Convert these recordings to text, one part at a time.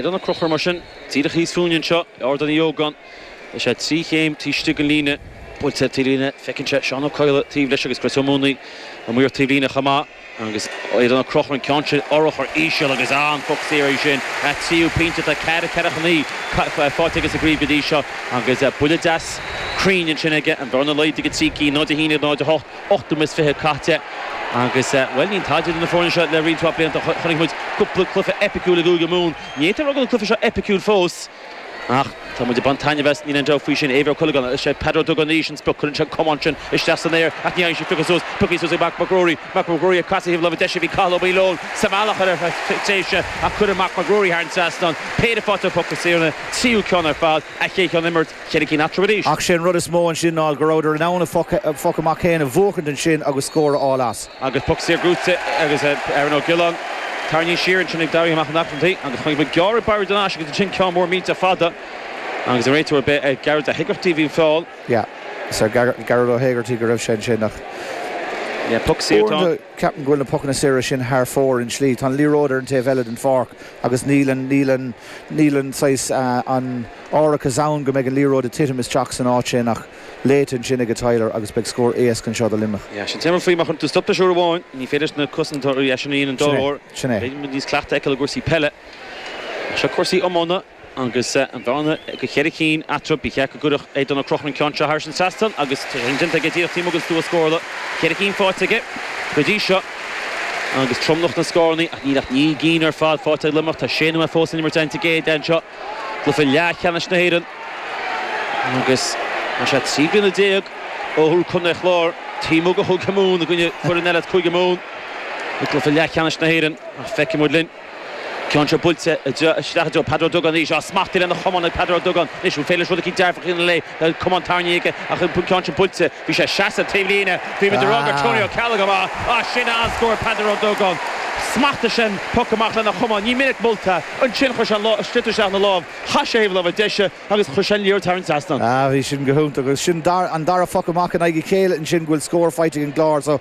Aodán Ó Conchúir mar sin, díreach thíos fúinne anseo, in Ardán Uí Ógáin, is é trí chéim taobh istigh den líne, buailte ar taobhlíne, feiceann sé Seán Ó Cadhla taobh leis agus Chris Ó Maonaigh amuigh ar taobhlíne chomh maith. Agus Aodán Ó Conchúir, an ceann sin, urchar íseal agus an poc saor sin. Tríú pointe atá cearta Chiarraí chun í a faighte aige sa gcraobh go dtí seo agus buille deas cruinn ansin aige, an bhearna laghdaithe go trí cinn, 0-11 le 0-8. ocht nóiméad is fiche caithte agus bhuel níl tada idir na foirne seo le roinnt mhaith blianta. Chonaic muid cúpla cluiche eipiciúil i gCúige Mumhan. Ní fhéadfá a rá go bhfuil an cluiche seo eipiciúil fós ach tá muid ag baint taitneamh as, níl aon dabht faoi sin. Éibhear Ó Cuileagáin, Is é Peadar Ó Dúgáin arís an sprioc, cuireann sé an camán sin isteach san aer ach ní fhéadfadh sé é a phiocadh suas, pioctha suas ag Marc Mac Ruairí. Marc Mac Ruairí ag casadh thaobh láimhe deise, bhí Cathal Ó Maoileoin sa mbealach ar tréimhse ach cuireann Marc Mac Ruairí thar an trasnán. Péire faighte ar phoc saor, an tríú ceann ar fad, a chéad cheann ón imirt. Cheithre cinn eatarthu arís. Ach sé an rud is mó ansin ná go rabhadar in ann a phoc amach féin a bhuachaint ansin agus scór a fháil as. Agus poc saor gnóthaithe ag Aaron Ó Giolláin tarraingthe siar ansin ag Daithí Mac an Airchinnigh agus chonaic muid gearradh baire den ais agus ansin ceann mór millteach fada agus an réiteoir b'ar Gearóid Ó hÉigeartaigh a bhí an feall. Yeah. Is ar Gearóid Ó hÉigeartaigh go raibh sé ansin ach. Yeah, poc saor atá ann. Ceapaim go bhfuil na pocanna saora sin thar fóir i slí. Tá an liathróid ar an taobh eile den pháirc agus níl an, níl an, níl an saghas, an árachas ann go mbeidh an liathróid ag titim isteach san áit sin ach léite ansin aige Tyler agus beidh scór éasca anseo do Luimneach. Sea, sin téama faoi má chuireann tú stop leis uair amháin, ní féidir leis na cosantóirí, sea, sin a dhéanamh. Sin é, Doire. sin é. Bheadh muid níos cleachta a fheiceáil i gcúrsaí peile. Seo cúrsaí iomána. Agus an bhearna go cheithre chinn eatarthu, ba cheart go gcuirfeadh Aodán Ó Conchúir an ceann seo thar an trasnán agus tá sé sin déanta aige díreach taobh amuigh den stua scórála. Ceithre chinn faighte aige go dtí seo agus tromlach na scóranna ach níl ach naoi gcinn ar fad faighte ag Luimneach. Tá sé nóiméad fós le n-imirt an-te géar anseo i gcluiche leathcheannais na hÉireann agus tá sé trí bliana déag ó thuill contae an Chláir taom óg a thug Maun i gcoinne foireann eile as Cúige Mumhan i gcluiche leathcheannais na hÉireann. Ach feicfidh muid linn. Ceann seo buailte isteach i dtreo Peadar Ó Dúgáin arís. Á, smachtaithe lena chamán ag Peadar Ó Dúgáin anois. An féidir leis rud eicínt dearfach a dhéanamh lena chamán tarraingthe aige ach an ceann sin buailte. Bhí sé síos an taobhlíne. Bhí muid a rá gur Tony Ó Ceallaigh a bhí ann. Á, sin an scór Peadar Ó Dúgáin. Smachtaigh sé an poc amach lena chamán. Ní minic molta. Ansin chuir sé an lámh sliotar isteach ina lámh. Chas sé ar thaobh a láimhe deise agus chuir sé an liathróid thar an trasnán. Á, bhí sin go hiontach. Agus sin dar, an dara phoc amach i ndiaidh a chéile ansin go bhfuil scór faighte ag an gClár. So,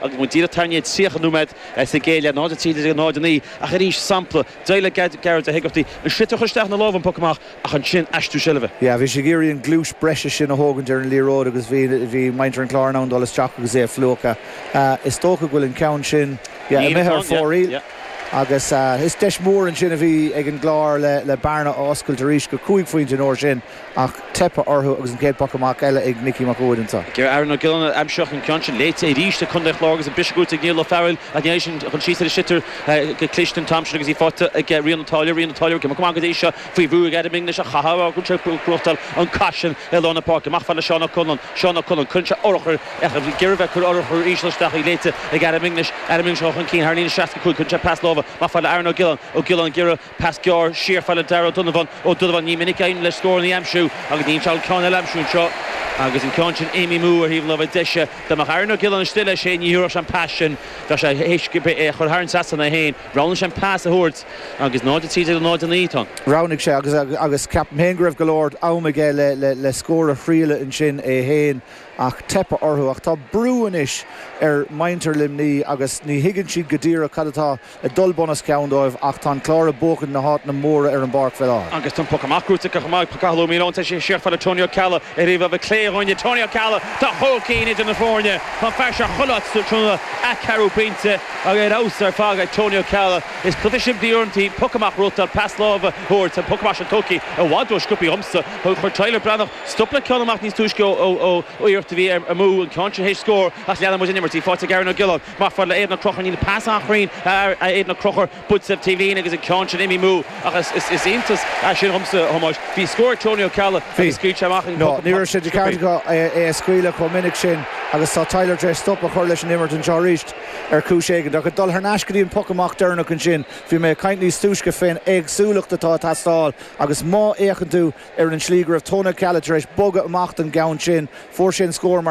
agus muid díreach ag tarraingt ar 30 nóiméad sa gcéad leath, 0, 13 le 0, 9, ach arís sampla eile Gearóid Ó hÉigeartaigh, an sliotar curtha isteach ina lámh ón bpoc amach ach ansin aistriú seilbhe. Yeah, bhí sé ag iarraidh an gluais breise sin a thógaint ar an liathróid agus bhí, bhí muintir an Chláir in ann dul isteach agus é a phluchadh. Is dócha go bhfuil an ceann sin, yeah, imithe ar fóraoil agus is deis mhór ansin a bhí ag an gClár le, le bearna a oscailt arís go cúig phointe an uair sin. Ach teipthe orthu agus an chéad phoc amach eile ag Nickie Mac Uaid anseo ag iarraidh Aaron Ó Giolláin a aimsiú ach an ceann sin léite arís ag Contae an Chláir agus an briseadh gnóthaithe ag Niall O Fearghail ach ní eisean a chrom síos ar an sliotar go cliste an t-am sin agus í faighte ag Rian O Táilliúir. Rian O Táilliúir ag imeacht amach go dtí seo faoi bhrú ag Adam English ach caithfear a rá go bhfuil sé ag gnóthachtáil an cath sin i lár na páirce. Amach fad le Seán O Conluain. Seán O Conluain. Cuireann sé urchar ach ar deireadh bheith ag cur urchar íseal isteach í léite ag Adam English. Adam English ag dul chun cinn thar líne 65. Cuireann sé pas láimhe amach fad le Aaron Ó Giolláin Ó Giolláin ag gearradh. Pas gearr siar fad le Darragh Ó Donnabháin. Ó Donnabháin, ní minic a éiríonn leis scóranna a aimsiú agus níl sé in ann ceann eile a aimsiú anseo agus an ceann sin imithe amú ar thaobh an láimhe deise. Dá mbeadh Aaron Ó Giolláin istigh leis féin ní thabharfadh sé an pas sin. Bheadh sé th'éis é a chur thar an trasnán é féin. Roghnaigh sé an pas a thabhairt agus 0, 13 le 0, 9 atá ann. Roghnaigh sé agus agus ceapaim féin go raibh go leor am aige le le scór a thriail ansin é féin ach teipthe orthu. Ach tá brú anois ar muintir Luimní agus ní thuigeann siad go díreach cad atá ag dul bunoscionn dóibh ach tá an Clár ag buachaint na háiteanna móra ar an bpáirc faoi láthair. Agus tá an poc amach gnóthaithe acu chomh maith ag Cathal Ó Maoileoin. Tá sé siar fad le Tony Ó Ceallaigh ar thaobh láimhe clé dhúinne. Tony Ó Ceallaigh tá chúig cinn idir na foirne. Tá an fear seo chuile áit tráthnóna an ceathrú pointe ar fheabhas ar fad ag Tony Ó Ceallaigh. Is cluiche simplí uaireantaí, poc amach, rothaíl, pas láimhe a thabhairt. Tá an poc amach sin tugthaí i bhfad rósciobtha dhomsa. Chuir Tyler Breathnach stop le ceann amach níos túisce ó iarracht a bhí amú, an ceann sin th'éis scór ach leanfaidh muid an imirt. Í faighte ag Aaron Ó Giolláin, Amach fad le Aidan Ó Conchúir níl an pas an-chruinn ag Aidan Ó Conchúir, buailte sa taobhlíne agus an ceann sin imithe amú ach is iontas é sin dhomsa a Thomáis. Bhí scór ag Tony Ó Ceallaigh agus scaoil sé amach an poc amach sách sciobtha. Nó ní raibh sé de cheart aige é a scaoileadh chomh minic sin agus tá Tyler tar éis stop a chur leis an imirt anseo arís ar chúis éigin. Ach ag dul thar n-ais go dtí an poc amach deireanach ansin, bhí mé ag caint níos túisce fén éagsúlacht atá ag teastáil agus má fhéachann tú ar an slí go raibh Tony Ó Ceallaigh tar éis bogadh amach don gceann sin, fuair sé an scór mar